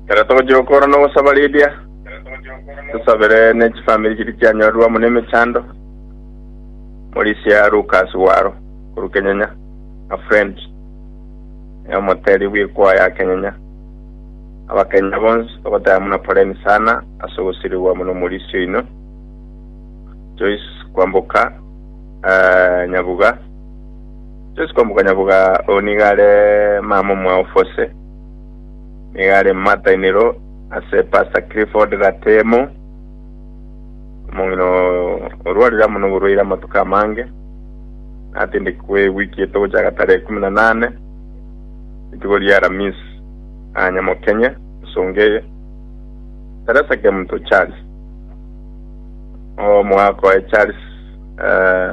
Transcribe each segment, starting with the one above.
Ekero togochia gokora na ogosaba Lydia, tosabere ne chifamiri chiria chianyorire amo nemechando. Morisia Lucas Waro korwa Kenyenya na Friend na omoteri bw'ekwaya ya Kenyenya. Abakenya bonsi togoteba buna poleni sana ase ogosirigwa amo n'omorisia oino. Joyce Kwamboka eh, Nyabuga. Yesu komokanyaboga oyo nigo are mama omwaofu ase, nigo are momatainero ase Pastor Clifford Gatemo, omong'ina oo orwarire amo noborwaire amatuko amange, natindekigwe ewiki eto gochaka tarehe ikomi na nane, rituko ria Aramisi, aa Nyamokenya, ensonga eye. Teresa Kemuto Charles, omogaka oye Charles, eh,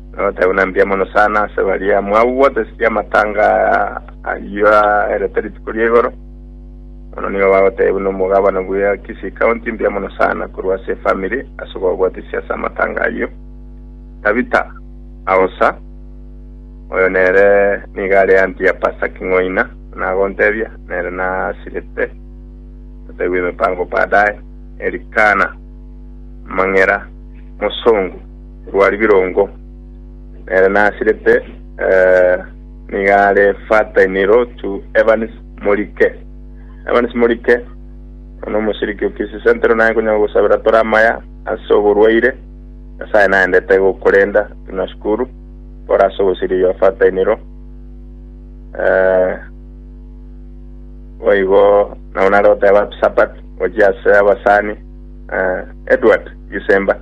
Nabateebia buna mbuya mono sana ase baria mwagwoteseti amatanga ayio aerete rituko ria igoro. Mono nigo bagoteebia buna omogabana bwa Kisii County mbuya mono sana korwa ase efamiri ase okogwoteseti ase amatanga ayio. Tabitha Aosa, oyo nere nigo are anti ya Pastor King'oina, buna agontebia, nere nasirete totaigwe emepango baadaye. Elikana Mang'era, mosongo. rwa ribirongo, nere nasirete eh, nigo are Fatainerotu Evans Morike. Evans Morike ono omoshiriki okisi sentero naye konyara gosabera tore amaya ase oborwaire Nyasaye naendete gokorenda tunashukuru kore ase ogosiriria Fatainero eh, boigo nabo nare goteba sapat gochia ase abasani eh, Edward Gisemba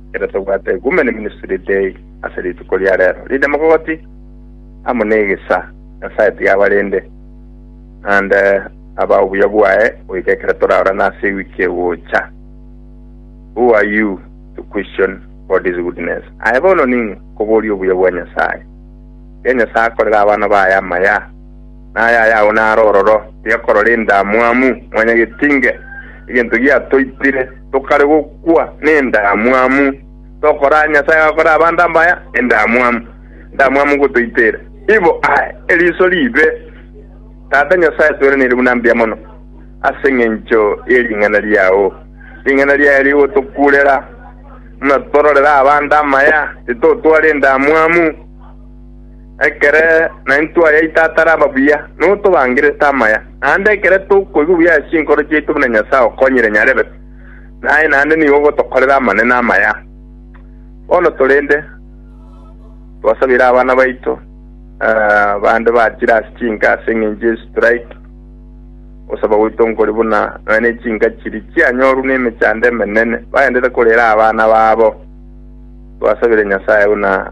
Ekero tobwate Ecumene Ministry Day ase rituko ria rero, rinde mogogoti amo negesa Nyasaye tiga abarende, naende abae obuya bwaye goika ekero toraorane ase ewiki egocha. Who are you to question God's goodness? Aye bono ning'o koboria obuya bwa Nyasaye? Tiga Nyasaye akorere abana baye amaya. na aya ayao naro ororo, tiga korora endamwamu, mwanyagetinge, egento giatoitire, tokare gokwa nendamwamu, tokora aya Nyasae agakora abanto abaya, endamwamu, endamwamu ngotoitera. Ibo ae, eriso riibe, Tata Nyasae, tweranire buna mbuya mono, ase engencho ye ring'ana riao, ring'ana riaye rigotokurera, buna tororera abanto amaya, titotwara endamwamu, Ekere naintwe twayaita ataraba buya, nigo tobangerete amaya. Naende ekere tokoigwa buya ase chinkoro chiaito buna Nyasae okonyire nyarebe, naye naende nigo ogotokorera amanene amaya. Bono torende, twasabeire abana baito bande bachire ase chinka ase engencho ye strike. Ogosaba gwaito nkore buna nonya ne chinka chiri chianyorwe ne emechando emenene, baendete korera abana babo. Twasabire Nyasae buna